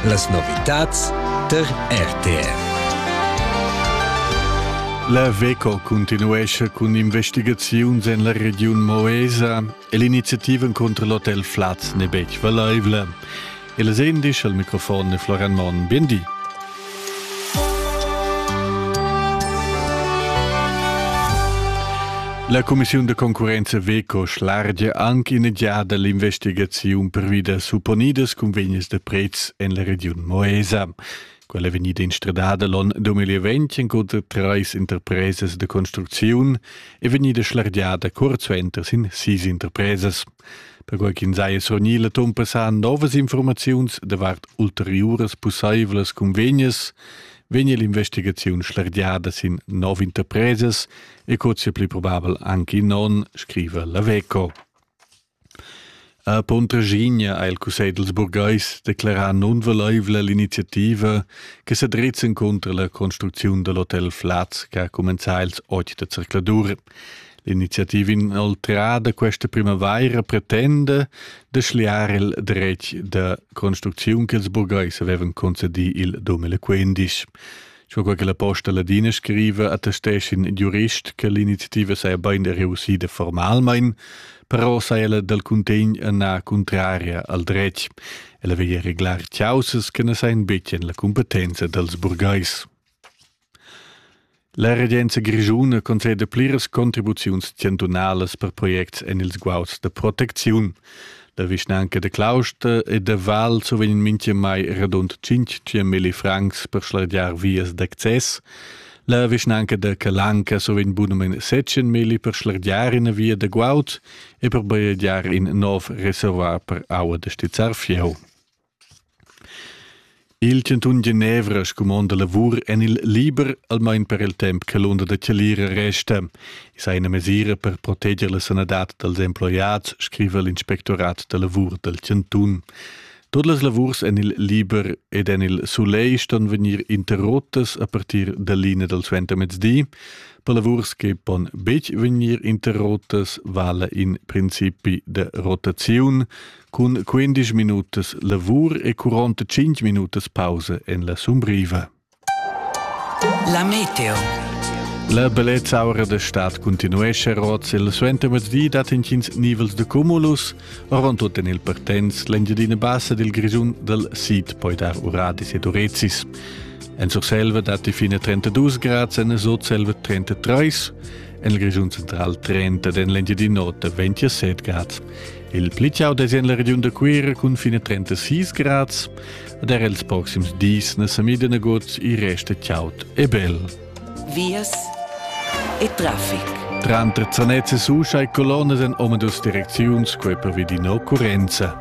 Las novitads tar RTR. La VECO continuescha cun investigaziuns en la regiun Moesa e l'iniziativa contro l'hotel Flaz n'è betg valaivla. Il sendisch al microfon è Florian Monn. Bien di. La cumissiun da concurrenza Veco schlargia anche in giada l'investigaziun pervi da supponidas convegnes da prezs en la regiun Moesa. Quella è vegnida instradada l'on 2020 encunter treis interpresas da construcziun e vegnida schlargiada cuort suenter sin sis interpresas. Perquai ch'ins haja surgnì la tumpa sajan novas informaziuns davart ulteriuras pussaivlas cunvegnas, vegnia l'investigaziun schlergiada sin nov interpresas e co sia pli probabel anche non, scriva la Veco. A Pontraschigna ha il Cussegl dels burgais declarà nunvolaivla l'iniziativa che sa drizzan cunter la construcziun dell'hotel Flaz che ha cumenzà ils 8 da circladur. L'iniziativa inoltrada questa primavaira pretenda da schliar il dretg da construcziun ch'ils burgais avevan concedì il 2015. Sco quella che la Posta Ladina scriva, attestesch in giurist che l'iniziativa saja bain reussida formalmain, però saja ella dal cuntegn ennà cuntraria al dretg. Ella veglia reglar caussas che na sajan betg en la cumpetenza dals burgais. La regenza grischuna conceda pliras contribuziuns chantunalas per projects en ils guauds da protecziun. La vischnanca da Clausta e da Val survegn mintgamai radund 500.000 francs per schlargiar vias d'access. La vischnanca da Calanca survegn bunament 700.000 per schlargiar ina via da guaud e per bajegiar in nov reservoir per aua da stizzar fieu. Il chantun Genevra scumonda lavur en il liber almain per il temp che l'unda da chalira resta. I sa ina mesira per proteger la sanadad dals emploiads, scriva l'inspectorat da lavur dal chantun. Tut las lavurs en il liber ed en il soleil ston vegnir interrottas a partir da linea dal suentermezdi. Per lavurs che pon betg vegnir interrottas vala in principi da rotaziun. Cun quindisch minutas lavur e quaranta cinq minutas pausa en la Sumbriva. La meteo. La bellezzaura da stad continuesce roz il suentermezdi dat intgins nivels de cumulus, ron tut en il Pertens, l'engiadina bassa del Grisun del Sid poi dar uradis ed urezis. En Surselva dat die fine 32 Grad, en Sotselva 33, en il Grisun central 30, en l'engiadina nota 27 Grad. Il pli chau dess en la regiun da Cuira cun fine 36 grads, ed er els proxims dis na sa mida nagut i resta chaud e bel. Vias e traffic. Tranter Zanezze Suscia e Colonas en omadus direcziuns quei pervi di occurrenza.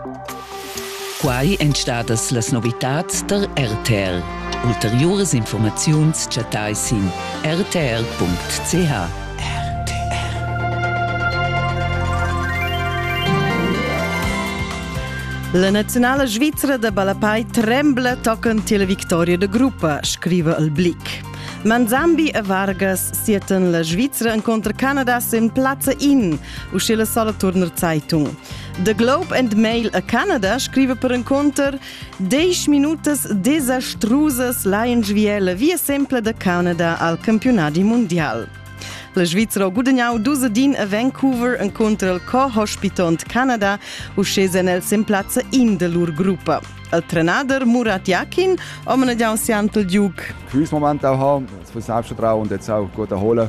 Quai èn stadas las novitads da RTL. Ulteriuras informaziuns chattai sin rtl.ch. La naziunala svizra da ballapei trembla tochen tier la victoria da gruppa, scriva il Blick. Manzambi e Vargas sieten la Svizra incontra Canada sin plazza in, uschè la sola turner Zeitung. The Globe and Mail a Canada scrive per inconter 10 minutas desastrusas lain Viele via sempre da Canada al campionati mondial. La Svizzera ha gudagnau dus din a Vancouver inconter il co-hospitont Canada, uschè sen el sin plazza in de lur gruppa. Il trenader Murat Jakin ha managgiau siant il Duke. Quiz moment auch haben, das muss ich schon trauen und jetzt auch gut erholen.